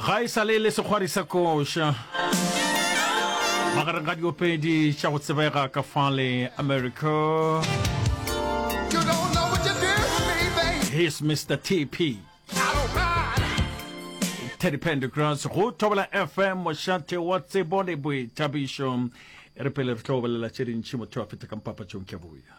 Ga e sa le e le sekgwari sa koša magareng ga diopedi tša go tsebega ka fale America. He's Mr. TP. Teddy Pendergrass go thobela FM mošate wa tsebo le boithabišo. E re pele re tlo bolela tše dintši motho a feta ka mpapatšong ke boya.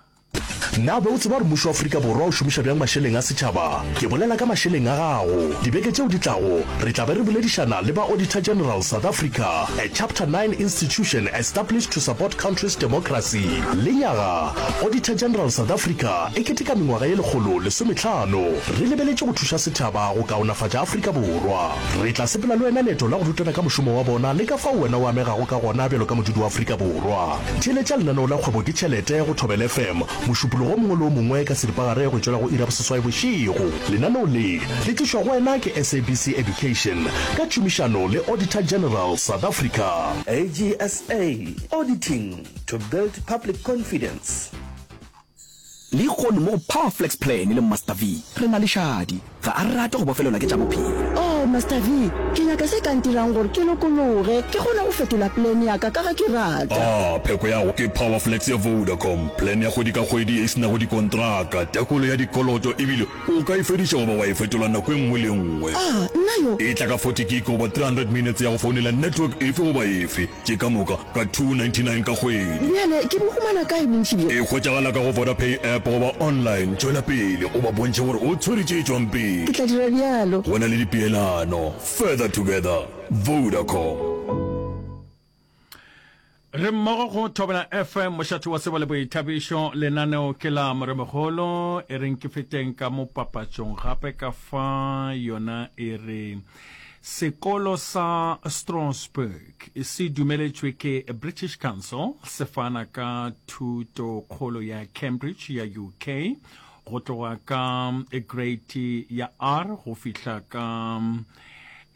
Na be o tseba gore mmušo wa Afrika Borwa o šomiša bjang mašeleng a setšhaba? Ke bolela ka mašeleng a gago. Dibeke tšeo di tlago, re tla be re boledišana le ba Auditor General South Africa, a Chapter 9 institution established to support country's democracy. Lenyaga, Auditor General South Africa e keteka mengwaga ye lekgolo lesometlhano. Re lebeletše go thuša setšhaba go kaonafatša Afrika Borwa. Re tla sepela le wena leeto la go rutana ka mošomo wa bona le ka fao wena o amegago ka gona bjalo ka modudi wa Afrika Borwa. Theeletša lenaneo la Kgwebo ke Tšhelete go Thobela FM mošupologo o mongwe le o mongwe ka seripagare go tšwela go iri ya boseswai bošego. Lenaneo le le tlišwa go wena ke SABC Education ka tšhomišano le Auditor General South Africa. AGSA, Auditing to build public confidence. Lehono mo go Power Flex Plan le Master V, re na le šadi. Ga a rate go bofelelwa ke tša bophelo. Oh, Master V, ke nyaka se ka ntirang gore ke lokologe, ke kgone go fetola plan ya ka, ka ge ke rata. Ah, pheko ya go ke Power Flex ya Vodacom, plan ya kgwedi ka kgwedi e se nago dikontraka, tekolo ya dikoloto e bile O ka e fediša goba wa e fetola nako e nngwe le e nngwe. A nna yo. E tla ka 40 gig goba 300 minutes ya go founela network efe goba efe, tše ka moka ka 299 ka kgwedi. Bjale ke bo humana kae bontši bjo? E hwetšagala ka go Vodapay app goba online. Tšwela pele o ba bontšhe gore o tshwere tše tšwang pele. Ke tla dira bjalo. Go na le dipeelano. Further together. Vodacom. re mmogo go thobela fm mošate wa sebo le boithabišo lenaneo ke la moremogolo e reng ke feteng ka mo papatšong gape ka fa yona e re sekolo sa strasbourg se dumeletšwe ke british council se fana ka thuto kgolo ya cambridge ya uk go tloga ka grade ya r go fihla ka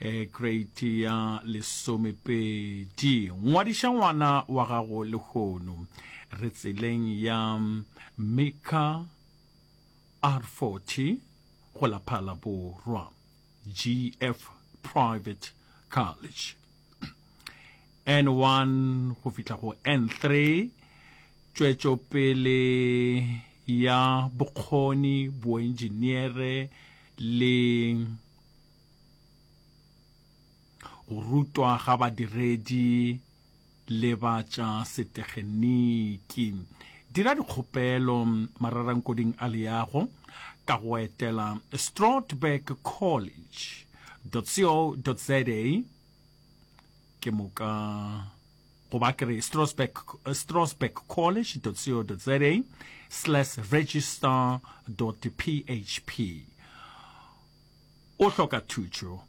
e kreiti ya lesomepedi ngwadiša ngwana wa gago lehono re tseleng ya mika r40 go laphala borwa gf private college n1 go fihla go n3 tšwetšopele ya bokgoni boenjiniere le Go rutwa ga badiredi le ba tša setegeniki. Dira dikgopelo mararankwading a leago ka go etela Stroudberg College co.za ke moka goba ke re Stroudberg College co.za slash register php O hloka thušo?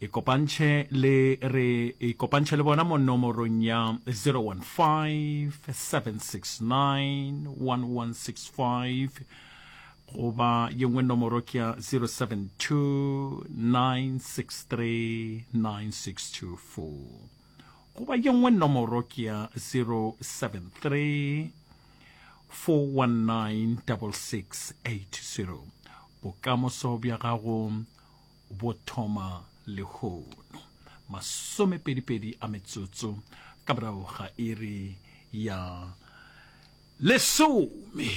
Ikopantšhe le re ikopantšhe le bona mo nomorong ya 015-769-1165 goba ye nngwe nomoro ke ya 072-963-9624 goba ye nngwe nomoro ke ya 073-486-6666. 4196680 Bokamoso bja gago bo thoma lehono masomepedipedi a metsotso ka morago ga iri ya lesome